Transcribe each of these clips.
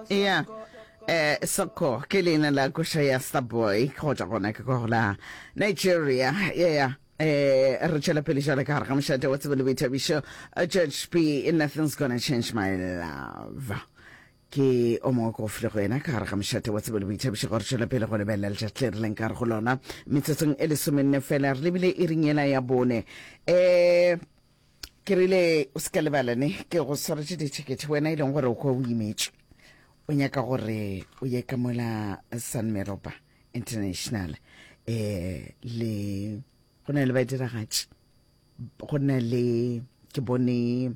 ya eh soko ke leina la koša ya starboy kgotsa gona ke kwa la nigeria yeah eh re tšwela pele jale ka gare ga mošate wa tsebe le boithabišo Uh, church b nothing's gonna change my love ke o mongwe ko file go yena ka gare ga mošate wa tsebe le boithabišo gore tšwela pele go lebelela letšatši le rileng ka gare go lona metsotsong e lesomenne fela re lebile e ringela ya bone um Ke rile, O se ka lebala ne, ke go swaretše dithekethe, wena e leng gore o kwa o imetšwe. O nyaka gore o ye ka mola San Meropa International. Eh, le go na le badiragatši go na le ke bone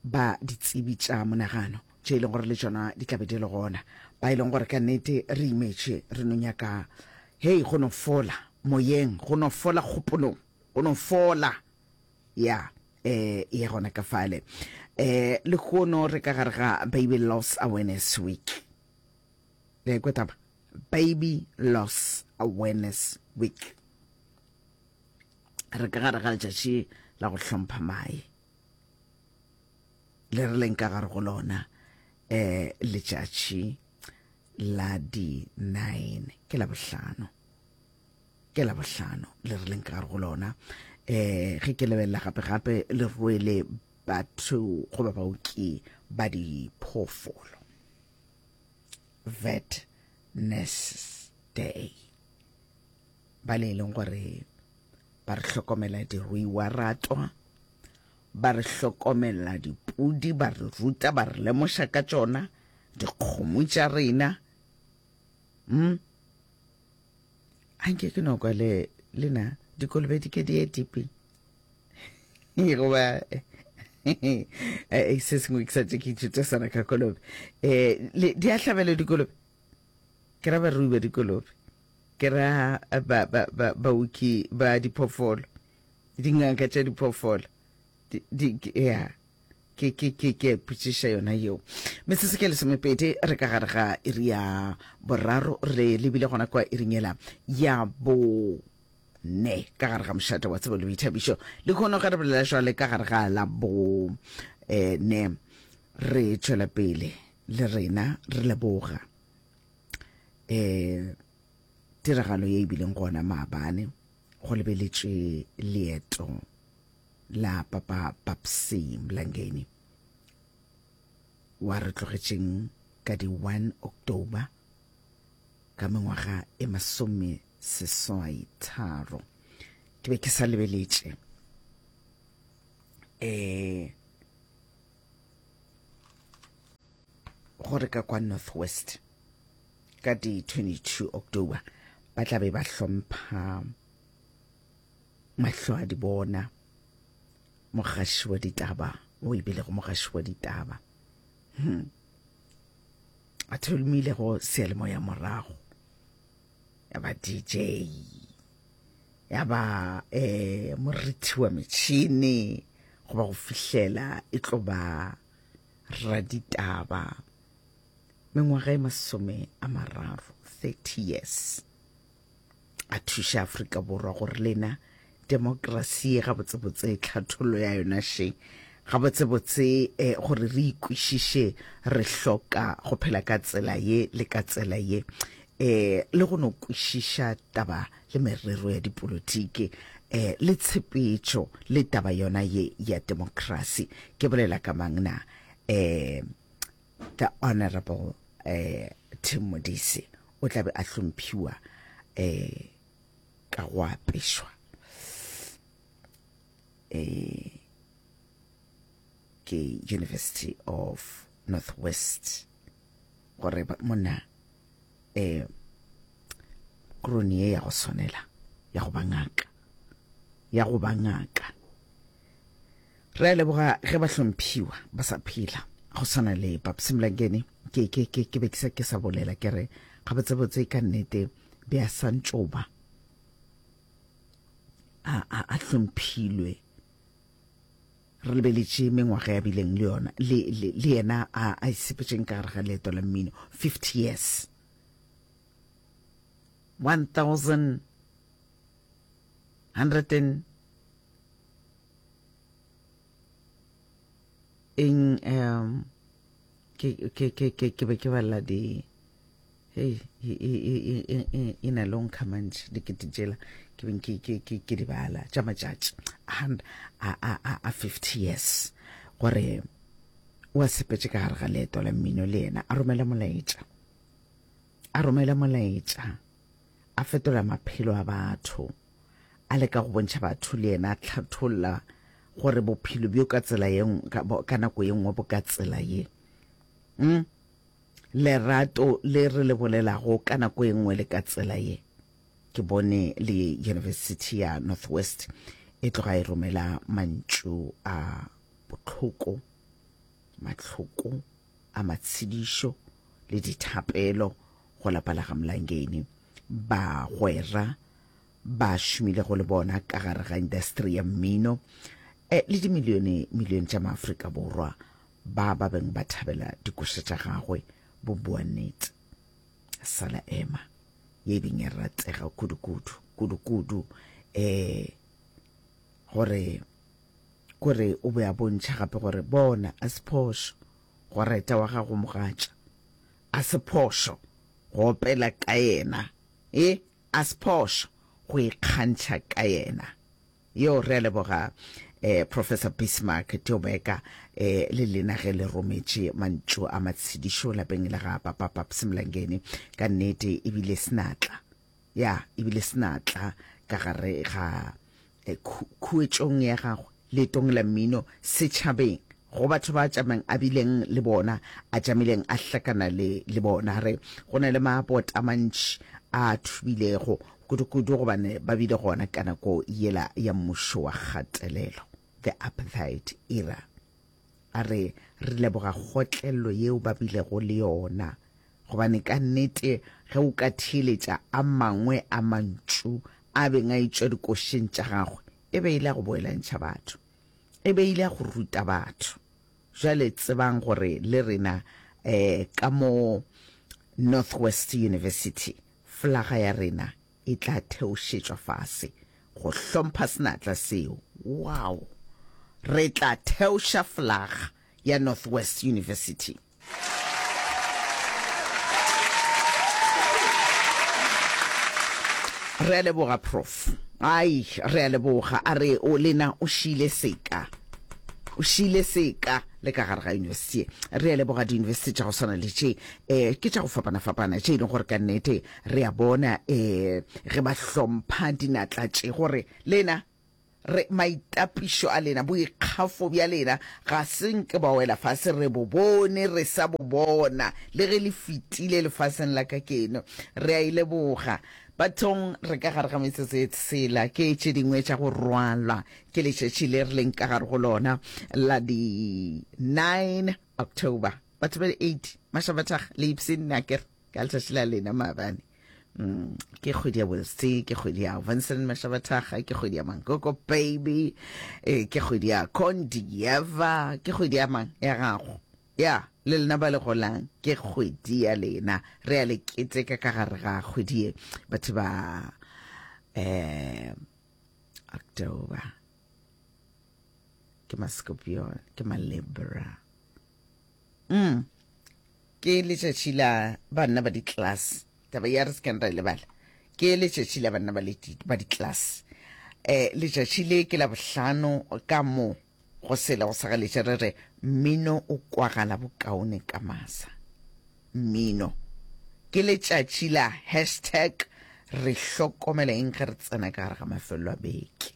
ba ditsebi tša monagano tše e leng gore le tšona di tlabe di le gona ba e leng gore ka nnete re imetše re no nyaka hei go no fola moyeng go no fola kgopolong go no fola ya eh e gona ka fale eh le kgono re ka gare ga baby loss awareness week le kwe taba baby loss awareness week re ka gare ga letšatši la go hlompha mae le re leng ka gare go lona eh letšatši la di 9 ke la bohlano ke la bohlano le re leng ka gare go lona um ge ke lebelela gape-gape le rwele batho goba baoki ba diphoofolo vet nurses day ba le e leng gore ba re hlokomela diruiwa ratwa ba re hlokomela dipudi ba re ruta ba re lemoša ka tšona dikgomo tša rena mm? a nke ke no kwa le le na dikolobe di ke di ye dipe goba se sengwe ke sa tse ke ithuta sana ka kolobe um di a hlabela dikolobe ke ra barui ba dikolobe ke ra baoki ba diphoofolo dingaka tša diphoofolo ya ke ke ke ke putšiša yona yeo metsese ke lesomepedi re ka gare ga iri ya boraro re lebile gona kwa iringela ya bo ne ka gare ga mošate wa tsebo le boithabišo le kgono ge re bolela jwale ka gare ga la bo eh, ne re tšwela pele le rena re leboga eh tiragalo ye e bileng gona maabane go lebeletšwe leeto la papa papsi mlangeni wa re tlogetšeng ka di 1 october ka mengwaga e masome seswai tharo ke be ke sa lebeletše um gore ka kwa north west ka di 22 october ba tla be ba hlompha mahlo a di bona mogaši wa ditaba o e bilego mogaši wa ditaba hmm. a tholomile go seelemo ya morago ya ba dj ya ba um morithi wa metšhini goba go fihlela e tlo ba raditaba mengwaga e masome a mararo thirty years a thuša Afrika Borwa gore lena demokrasi gabotsebotse tlhathollo ya yona še gabotsebotse eh, gore re ikwešiše re hloka go phela ka tsela ye le ka tsela ye eh le go no kwešiša taba le merero ya dipolotiki eh le tshepetšo le taba yona ye ya demokrasi ke bolela ka mang na eh The Honourable eh, Tim Modise o tla be a hlomphiwa eh, ka go apešwa eh, ke University of Northwest gore ba- monna eh krone ye ya go swanela ya go ba ngaka ya go ba ngaka re a leboga ge ba hlomphiwa ba sa phela go swana le papsimlangene ke ke ke ke be ke sa ke sa bolela ke re ga botsebotse ka nnete be a santšoba a a a hlomphilwe Re lebeletše mengwaga ya bileng le yona le, le, le yena a, a isepetšeng ka gare ga leeto la mmino. Fifty years. One thousand hundred and in um, ke ke ke ke ke be ke balla di hey e e e e e, e, e na long kamantši dikete jela ke beng ke ke ke ke di bala tša matšatši a a a a 50 years gore wa sepetse ka gare ga leeto la mmino le yena a romela molaetša a romela molaetša a fetola maphelo a batho a le ka go bontšha batho le yena a tlhatholla gore bophelo bjo ka tsela ye ka nako ye nngwe bo ka tsela ye mm? lerato le re le bolelago ka nako ye nngwe le ka tsela ye ke bone le university ya northwest e tloga e romela mantšu a botlhoko matlhoko a matshedišo le dithapelo go lapa la ga Mlangeni. Bagwera ba šomilego le bona ka gare ga industri ya mmino eh, le dimilione milione tša maafrika borwa ba ba beng ba thabela dikoša tša gagwe bo bua nnete sala ema ye e beng e ratega kudukudu kudukudu um gore Kore o be a bontšha gape gore, Bona, a se phošo go reta wa gago mogatša. A se phošo go opela ka yena. E, a se phošo go ikgantšha ka yena. Yo, re a leboga eh, Professor Bismarck Teobeka, eh, le lena ge le rometše mantšu a matshedišo lapeng la ga Papa Paps Mlangeni. Ka nnete, e bile senatla. ya ebile se na tla ka gare ga eh, khuetšong ya gagwe leetong la mmino setšhabeng go batho ba tšamang a bileng le bona a tšamileng a hlakana le le bona re go na le mabota a mantši a thubilego kudu-kudu gobane ba bile gona ka nako yela ya mmušo wa kgatelelo the apartheid era A re, Re leboga kgotlello yeo ba bilego le yona, gobane ka nnete ge o ka theeletša a mangwe a mantšu a beng a etšwa dikošeng tša gagwe, e be e le a go boelantšha batho, e be e le a go ruta batho. Bjale tsebang gore le rena um ka mo Northwest University, flaga ya rena e tla theošetšwa fase go hlompha senatla seo. Wow! Re tla theoša flaga ya Northwest University. Re a leboga, Prof. Ai, re a leboga. A re o lena o šile seka o šile seka le ka gare ga yunibesithi re a leboga diyunibesithi tša go swana le tše um ke tša go fapana-fapana tše e leng gore ka nnete Re a bona ee, ge ba hlompha dinatla tše, gore lena, re, maitapišo a lena, boikgafo bja lena, ga se nke ba wela fase, re bo bone, re sa bo bona, le ge le fetile lefaseng la ka keno. Re a e leboga. Bathong, re ka gare ga metsotso e tshela, ke tše dingwe tša go rwalwa ke letšatši le re leng ka gare go lona, la di 9 October. Batho ba di 8, Mašabathaga, Leipzin, Naker. ka letsatsi la lena maabane mm, ke kgwedi ya bose ke kgwedi ya vincent mashabathaga ke kgwedi ya mankoko baby e, ke kgwedi ya condieva ke kgwedi ya mang ya gago ya le lena ba le golang ke kgwedi ya lena re ya le keteka ka gare ga kgwedi ye batho ba um october ke mascorpion ke malibra mm. ke letšatši la banna ba di-class taba ya re se keng ra e lebala ke letšatši la banna ba di-class um letšatši le ke la bohlano ka moo go sela go sa galetše re re mmino o kwagala bokaone ka masa mmino ke letšatši la hashtag re hlokomela eng ge re tsena ka gare ga mafelelo a beke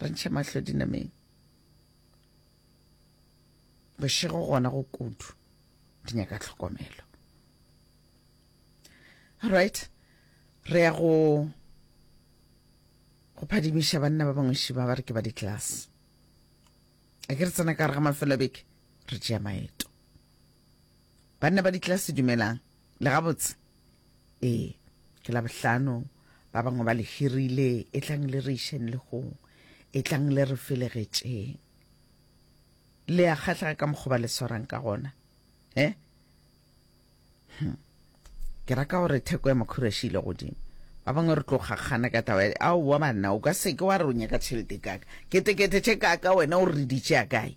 Re ntšhe mahlo dinameng. Bošego gona go kudu di nyaka tlhokomelo. Alright, re ya go go phadimiša banna ba bangwe šiba ba re ke ba di-class. A ke re tsena ka re ga mafelo beke re tšea maeto. Banna ba di-class dumelang Le gabotse? Ee, ke Labohlano, ba bangwe ba le hirile, etlang le re išeng legong, etlang le re felegetšeng. Le a kgahlega ka mokgoba le swarang ka gona, he? Hm. Ke raka gore theko ya makhura e šile godimo. Ba bangwe re tlo kgakgana ka taba ya, aowa banna, o ka seke wa re o nyaka tšhelete kaka. Ketekete tše kaka wena o re di tšea kae?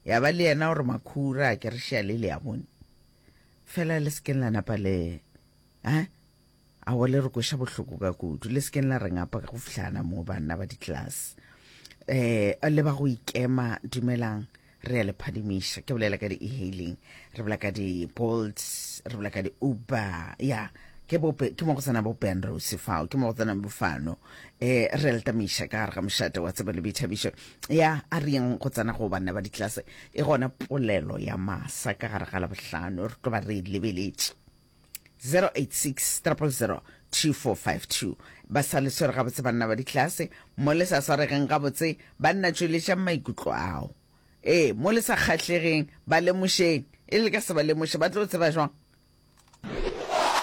Ya ba le yena gore makhura a ke re šea le le ya bone. Fela le sekeng la napa le eh a wa le re kweša bohloko ka kudu le sekeng la re ngapa ka go fihlana mo banna ba ditlase eh le ba go ikema dumelang re ya le phadimiša ke bolela ka di-e-hailing re bolela ka di-bolt re bolela ka di-uber ya yeah. ke bope ke mo go tsena bo penrose fao ke mo go tsena bofano eh re letamiša ka gare ga mošate wa tsebe le boithabišo ya a reng go tsena go banna ba ditlase Ke gona polelo ya masa ka gare ga Labohlano re tlo ba re e lebeletše. 0860002452 Ba sa le swere gabotse banna ba ditlase, mo le sa swaregeng gabotse banna tšweletšang maikutlo ao. Ee, mo le sa kgahlegeng ba lemošeng, e le ka se ba lemoše ba tlo tseba jwang?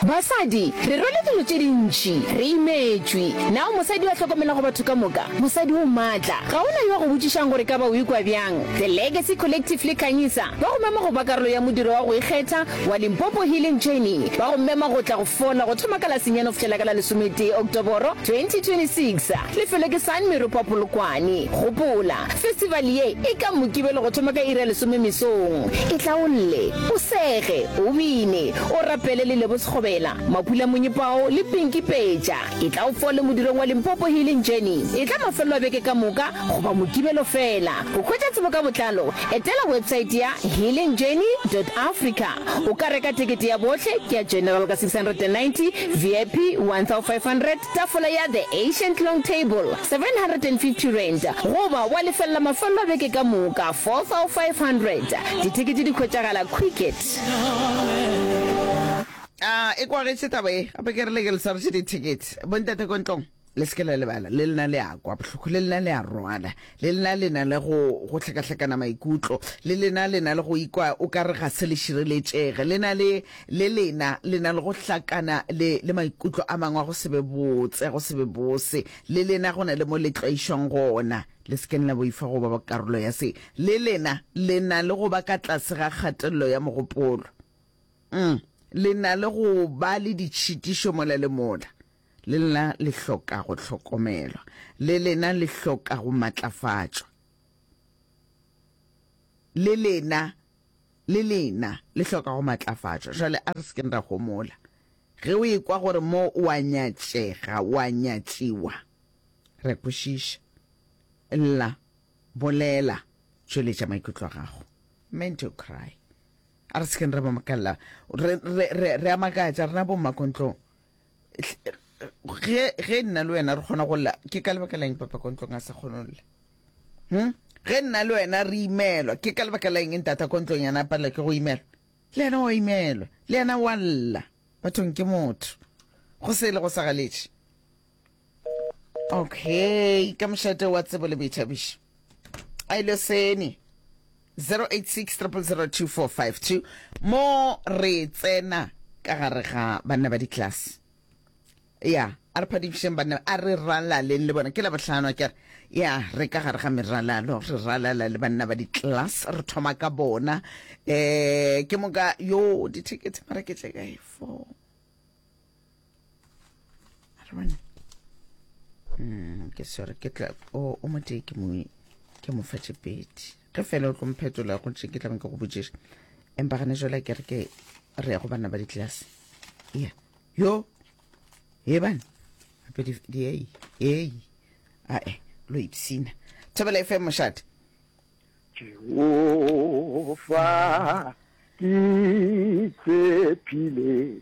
Basadi, re rwele dilo tše dintši, re imetšwe. Na o mosadi yo a hlokomelago batho ka moka? Mosadi o matla. Ga go na yo a go botšišago gore ka ba o ikwa bjang. The Legacy Collective le Khanyisa ba go mema go ba karolo ya modiro wa go ikgetha wa Limpopo Healing Journey. Ba go mema go tla go fola go thoma ka la senyane go fihlela ka la lesometee Oktoboro 2026. Lefelo ke San Meropa Polokwane. Gopola, festival ye e ka Mokibelo go thoma ka iri ya lesome mesong. Itlaolle, o sege, o bine, o rapele le Lebo Sekgobela, Mapula Monyepao le Pinky Peja. E tla o fole modirong wa Limpopo Healing Journey. E tla mafelelo a beke ka moka goba Mokibelo fela. Go hwetša tsebo ka botlalo, etela website ya healingjourney dot africa. O ka reka tekete ya bohle, ke ya General ka 690, VIP 1500, Tafola ya The Ancient Long Table, R750, goba wa lefelela mafelelo a beke ka moka, R4,500. Dithekete di hwetšagala Quicket. A e kwagetše taba ye, gape ke re le ke le swaretše dithekete. Bontate ko ntlong, le se ke la lebala, le lena le a kwa bohloko, le lena le a rwala. Le lena le na le go, go hlakahlakana maikutlo. Le lena le na le go ikwa o ka re ga se le šireletšege. Le na le, le lena le na le go hlakana le, le maikutlo a mangwe a go se be botse, a go se be bose. Le lena go na le mo le tlwaišwang gona. Le se keng la boifa go ba karolo ya se. Le lena le na le go ba ka tlase ga kgatelelo ya mogopolo. Um, le na le go ba le ditšhitišo mola le mola. Le lena le hloka go hlokomelwa. Le lena le hloka go matlafatšwa. Le lena, le lena le hloka go matlafatšwa. Jale a re se keng ra homola. Ge o e kwa gore mo o a nyatšega, o a nyatšiwa, re a kwešiša. Lla, bolela, tšweletša maikutlo a gago. Meant to cry. A re se keng ra ba makalla. Re, re, re, re a makatša, rena bo mmakontlong. ge ge nna le wena re kgona go lla ke ka lebaka leng papa ko ntlong a sa kgone go lla hmm? ge nna le wena re imelwa ke ka lebaka leng ntata ko ntlong yana palela ke go imelwa le yena wa imelwa le yena wa lla bathong ke motho go se e le go sa galetše okay ka mošate wa tsebo le boithabišo a ile sene 0860002452 mo re tsena ka gare ga banna ba ditlase ya a re phadišeng banna a re ralaleng le bona ke la botlhano kere ya re ka gare ga meralalo re ralala le banna ba di-class re thoma ka bona um ke moka yo dithekete mara ke tle kae four mm, ke sore ke tla o o mo tee ke mo ke mo fatše pedi ge fela o tlo mphetola go tše ke tla ke go botšiša empa gane jola ke re ke re ya go banna ba ditlelase ya yo e bane gape diei ei ae lo ipsina thabela efe mošate jehova ke tshepile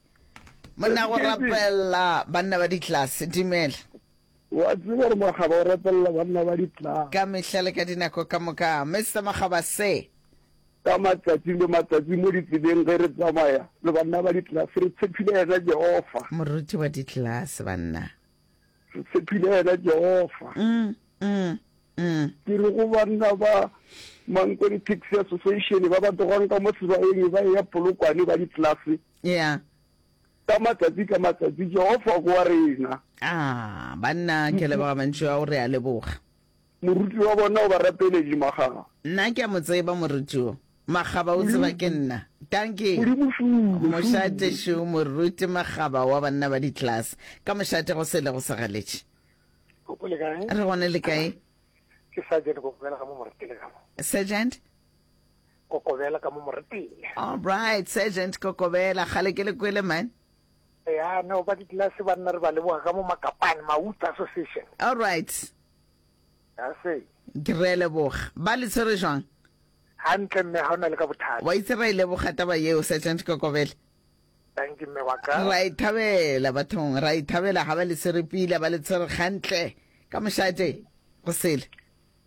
Monna go rapella banna ba ditlase. Dumela. Wa tseba gore makgaba o rapella banna ba ditlase. Ka mehla le ka dinako ka moka. Mister Makgaba se. Ka matšatšing le matšatšing mo ditseleng ge re tsamaya le banna ba ditlase re tshepile yena Jehova. Moruti wa ditlase banna. Re tshepile wena, Jehofa. Ke re go banna ba Mankweng Taxi Association ba ba togwang ka mo sebaeng ba eya Polokwane ba ditlelase ka matsatsi ka matsatsi, Jehofa ko wa rena. Banna ke leboga mantšu ao, re a leboga. Moruti wa bona o ba rapeletše makgaba. Nna ke a mo tseba moruti wo. Makgaba o tseba ke nna. Dankie. Modimo fulu, Mošate fulu. šo moruti makgaba wa banna ba ditlelase. Ka mošate go se ilego sa galetše. Koko le kae? Re gona le kae? Ke Sergeant Kokobela ka mo Moretele ka mo. Sergeant? Kokobela ka mo Moretele. Alright, Sergeant Kokobela. Kgale ke le kwele man. Ya no ba ditlelase ba nna re ba leboga ka mo Makapane, Mawuta Association. All right. Ya se. Re a leboga. Ba le tshwere jwang? Hantle mme ha ona le ka bothata. Wa itse ra e leboga taba yeo Sergeant Kokobela. Thank you mme wa ka. Ra e thabela bathong, ra e thabela ha ba le tshwere pila, ba le tshwere gantle ka mošate go sele.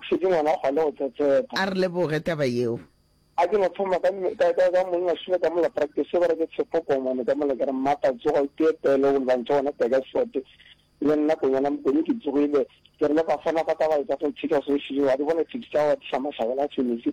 O šetše ngwana kgwa le go tsetseta. A re leboge taba yeo. A ke no thoma ka, ka, ka, ka monna Sule ka mola practice gore ke Tshepo Kongwane ka mola ke re, Mmata tsoga o tee pele o lebantše gona Takersford. Le nna Konyana Mokone ke tsogile. Ke re le Bafana ba ka ba etša political solution yeo, a di bone taxi tša gago wa di hlama sabela a se metsi.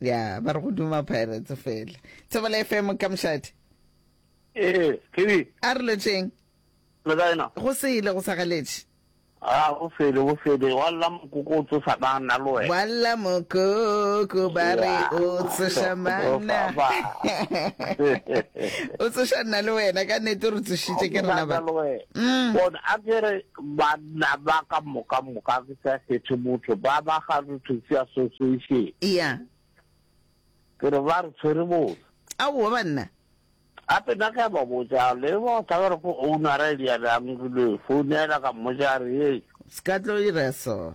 ya ba re go duma pirates fela thobela fm ka mošate ee kedi a re lotšeng le ka ena go sele go sa galetše a go sele go sele wa lla mokoko o tsosa banna le wena wa lla mokoko ba re o tsoša manna o tsoša nna le wena ka nete re tsošitše ke rena ba mm. bona a kere Banna ba ka moka moka ke sa kgethe motho ba ba ga Rototsi Association. Eya. Ke re ba re tshwere botse. Aowa banna. Gape nna ke a ba botsa le ba o tlabere go ownara e le ya bjang re lo e founela ka mmotsa a re ee. Skatlo e ra so.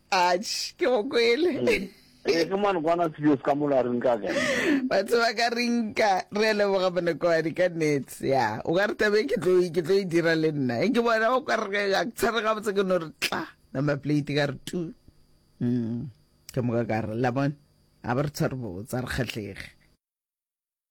Atšh, ke go kwele. Ee, ke mane kwana serious ka mola re nka ka. Batho ba ka re nka, re a leboga Monokoane ka nets. Ya, o ka re tabe ke tlo ke tlo e dira le nna. E ke bona o ka re ga ke tshware ga botse ke no re tla. Number plate ka re tu. Mm. Ke moka ka re la bona. A ba re tshware botse re kgatlege.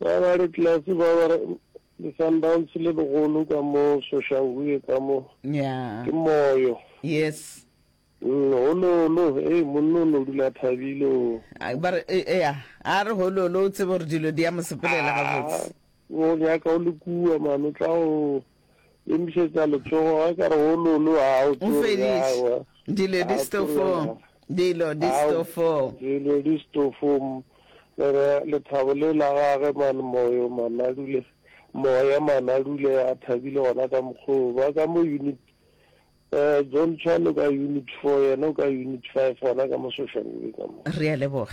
Ba ba re class ba ba re le Sundowns le legolo ka mo Soshanguve ka mo. Yeah. Ke moyo. Yes. Mm, hololo, hey monno no dula thabile o. Ba re e ya, a re hololo o tsebe gore dilo di ya mo sepelela ga botse. O nyaka o le kua mano tla o. Emišetša letsogo ge ka re o lulu a o tsore ya wa. Dilo di stofo. Dilo di stofo. Dilo di stofo. Le re lethabo le la gage man moyo manadule moya manadule a thabile gona ka mokgoo ba ka mo unit eh John Chan o ka unit 4 yena o ka unit 5 gona ka mo social media ka mo. Re a leboga.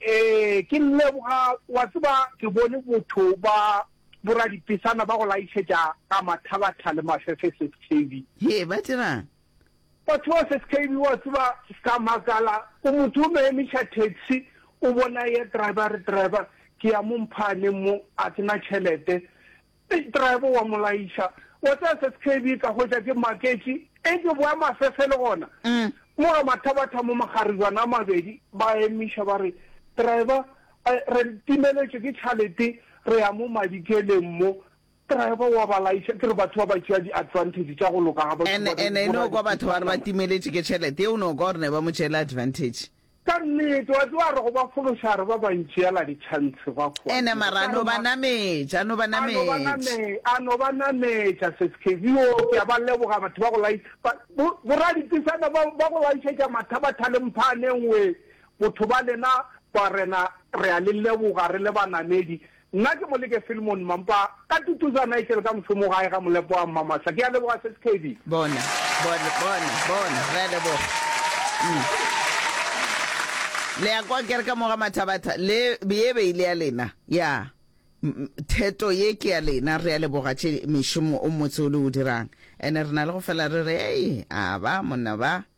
Ee, ke leboga. Wa tseba, ke bone botho ba boradipesana ba go laišetša ka mathabatha le mafefe, Seskeibi. Hee, ba dirang? Batho ba Seskeibi, wa tseba, ka makala. O motho o no emiša taxi, o bona e ya driver, a re, Driver, ke ya mo mphaaneng mo, a se na tšhelete. Big Driver wa mo laiša, wa tseba se skb ka hwetša ke maketše, etšwe boya mafefe le gona. Mo ga mathabatha mo magaribana a mabedi, ba emiša ba re, Driver, re timeletšwe ke tšhalete re ya mo Madikeleng mo. Driver wa ba laiša, ke re batho ba ba tšea di advantage tša go loka ga batho ba re, bo raditekane. Ene e no kwa batho ba re ba timeletšwe ke tšhelete, e o no kwa gore ne ba mo tšeele advantage. Ka nnete, wa tseba, re go ba fološa, re ba bantši yela ditšhantšhi gwa kua. Ene mara a no ba nametša, a no ba nametša. A no ba nametša, Seskevi, yoo, ke a ba leboga, batho ba go lai, ba, bo, boradipisana ba, ba go laišetša mathabathale mphaaneng we, botho ba lena, barena, re a le leboga, re le banamedi, Nna ke Moleke Filmon Mampa, ka tutuza Nigel ka mošomo gae ga molepo wa Mmamasa. Ke a leboga Seskhebi. Bona, bona, bona, bona, re a leboga. Mm. Le a kwa ke re ka moga mathabatha, le ye be e le ya lena. Ya. Theto ye ke ya lena, re a leboga tše mešomo o motse o le o dirang. Ene re na le go fela re re, Ei, a ba, monna ba.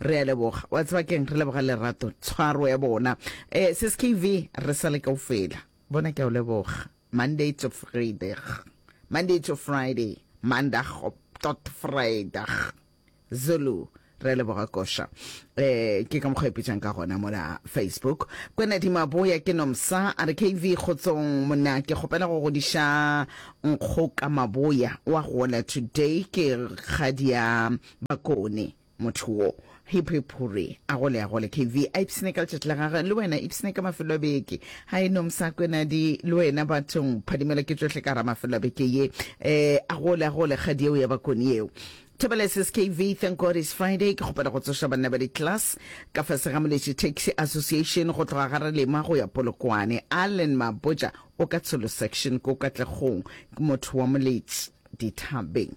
Re a leboga. Wa tseba keng? Re leboga lerato, tshwaro ya bona. Eh, Sis KV, re sa le kaufela. Bona ke a o leboga. Monday to Friday. Monday to Friday. Mandag op tot Vrydag. Zulu. Re a leboga koša. Eh, ke ka mokgwa ipitšang ka gona mola Facebook. Kwenedi Maboya ke nomsa a re KV kgotsong monna ke kgopela go godiša Nkgoka Maboya wa gola today ke kgadia bakone. Motho wo. Hip hip hurry. A gole a gole KV. A ipsine ka letšatši la gagwe. Le wena ipsine ka mafelo a beke. Hi no Msakwenadi. Le wena bathong. Phadimela ke tšohle ka gara mafelo a beke ye. Eh, a gole a gole kgadi yeo ya bakoni yeo. Thobela sis KV. Thank God it's Friday. Ke kgopela go tsoša banna ba di-class. Ka fase ga Moletši Taxi Association go tloga ga Relema go ya Polokwane. Allen Mabotja o ka Tsholo Section ko Katlegong. Ke motho wa Moletši. Dithabeng.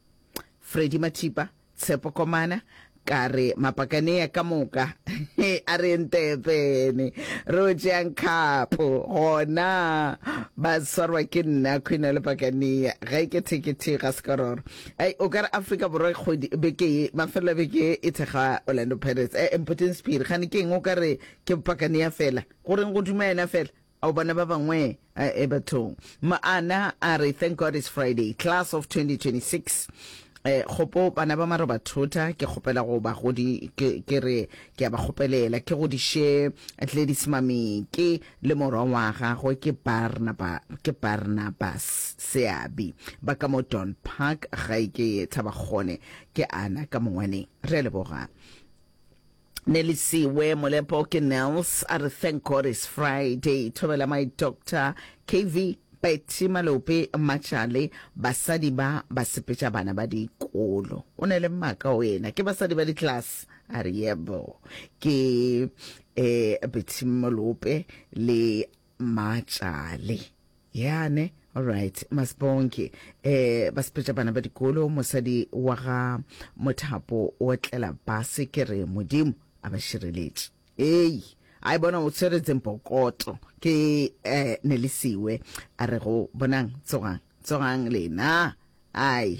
Freddy Mathipa, Tshepo Komana, ka re mapakanea ka moka a re ntepene re o tšeang khapo gona ba swarwa ke nna khwena le pakanea ga e ke thekethe ga sekororo ai o ka re afrika borwa kgodi beke ye mafelelo beke e thekga orlando pirates e eh, mpoteng sephiri gane ke eng o ka re ke pakanea fela goreng go duma yena fela Ao bana ba bangwe a e bathong. Moana a re, Thank God it's Friday. Class of 2026. E, kgopo bana ba marobathota, ke kgopela go ba godi, ke, ke re, ke a ba kgopelela, ke godiše Gladys Mameke le morwa wa gagwe, ke Barnaba, ke Barnabas Seabi, ba ka mo Don Park, gae ke Thabakgone, ke ana ka mongwaneng. Re a leboga. Nelisiwe Molepo ke Nels a re thank God it's Friday. Thobela my doctor KV Betty Malope Matšale basadi ba ba sepetša bana ba dikolo. O ne le maka o ena ke basadi ba di-class a re yebo ke eh Betty Malope le Matšale. Yane, all right, Masibonke. Eh, ba sepetša bana ba dikolo, mosadi wa ga Mothapo o tlela base ke re Modimo a ba šireletše. Ei, a e bona o tshwere tsempokoto ke eh, nelisiwe a re go bonang tsogang tsogang lena ai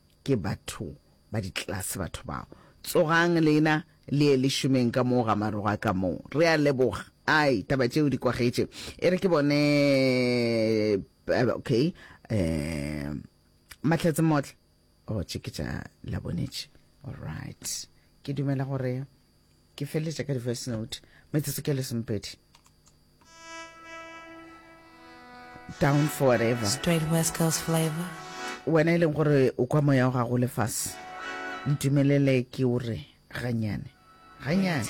Ke batho ba ditlelase batho bao. Tsogang lena le ye le šomeng ka moo ga maroga ka moo. Re a leboga. Ai, taba tšeo di kwagetše. E re ke bone, okay, um, Mahlatse Motle. Oh, tše ke tša Labonetše. All right. Ke dumela gore. ke feleletša ka di-voice note metsotso ke lesempedi down forever straight west coast flavor wena e leng gore o kwa moya o gago lefase ntumelele ke o re ganyane ganyane